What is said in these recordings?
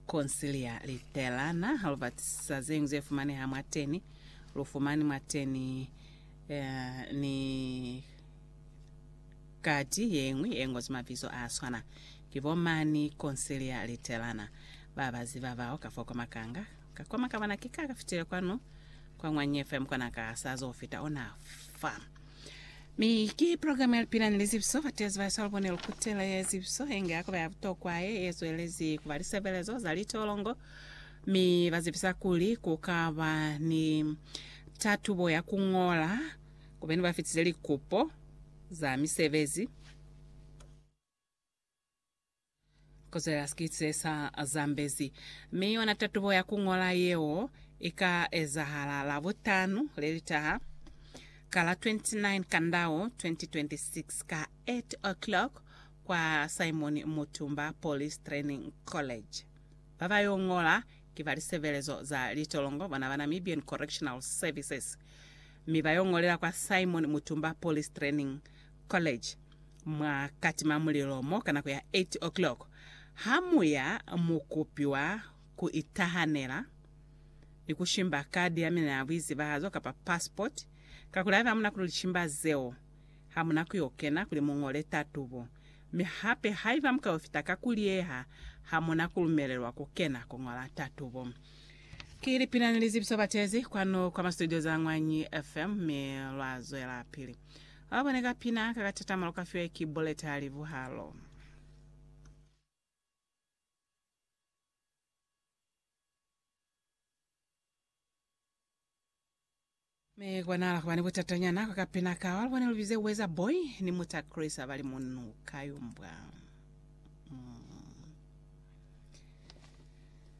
Conciliar Luterana, ha lu batisa zeñwi ze fumaneha mwateni. Lu fumani mwateni eh, ni kati yeñwi ye ngozwi mabizo a swana. Ki bo mani Conciliar Luterana ba ba ziba bao ka fo kwa makanga. Ka kwa makabana ki ka ka fitile kwanu, kwa mwa Nyefem, kwa na ka sa zo fita ona fa. Mi ki program ya Lipilani li Zibiso, Bateezi ba Yesu Alubone Lukutela ya Zibiso inge ya kuba ya butokwa ye ye zwelezi kuba lisebelezo za litolongo, mi ba zibisa kuli ku ka ba ni tatubo ya ku ñola ku beni ba fitize likupo za misebezi. Kozo ya sikitse sa Zambezi mi yona tatubo ya ku ñola yeo i ka ezahala Labutanu le li taha, ka la 29 Kandao 2026, ka 8:00 kwa Simon Mutumba Police Training College. Ba ba yo ñola ki ba lisebelezo za litolongo bona ba Namibian Correctional Services, mi ba yo ñolela kwa Simon Mutumba Police Training College. Mwa katimamulilo mo ka nako ya 8 o'clock, ha muya mu kupiwa ku itahanela ni ku shimba kadi ya mina ya buizibahazo kapa passport, kakuli haiba hamuna ku lishimba zeo, hamuna ku yo kena kuli mu ngole tatubo. Mi hape haiba mu ka yo fita ka ku liyeha, hamuna ku lumelelwa ku kena ku ngola tatubo. Ki lipina ni lizibiso batezi kwanu kwa ma studio za Ñwanyi FM, mi lwa zwelapili Ba bone ka pina ka katatama lu ka fiwa ki buleta li buhalo. Mi kwa nala kuba ni butatanyana kwa kapina ka wa lubone lubize Weza Boy ni muta Chris abali munu kayumbwa. Mm.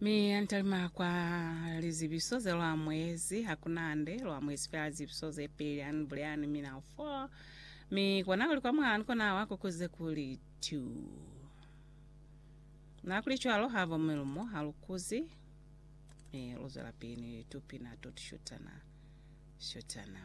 Mi antalima kwa lizibiso ze lwa mwezi hakunande lwa mwezi fela lizibiso ze peli ani buleani mina u 4 mi kona kuli kwa mwani kona wa kukuze kuli 2 na kuli cwalo ha vo milumo ha lukuzi mi luzwela pili ni litupina to tushutana shutana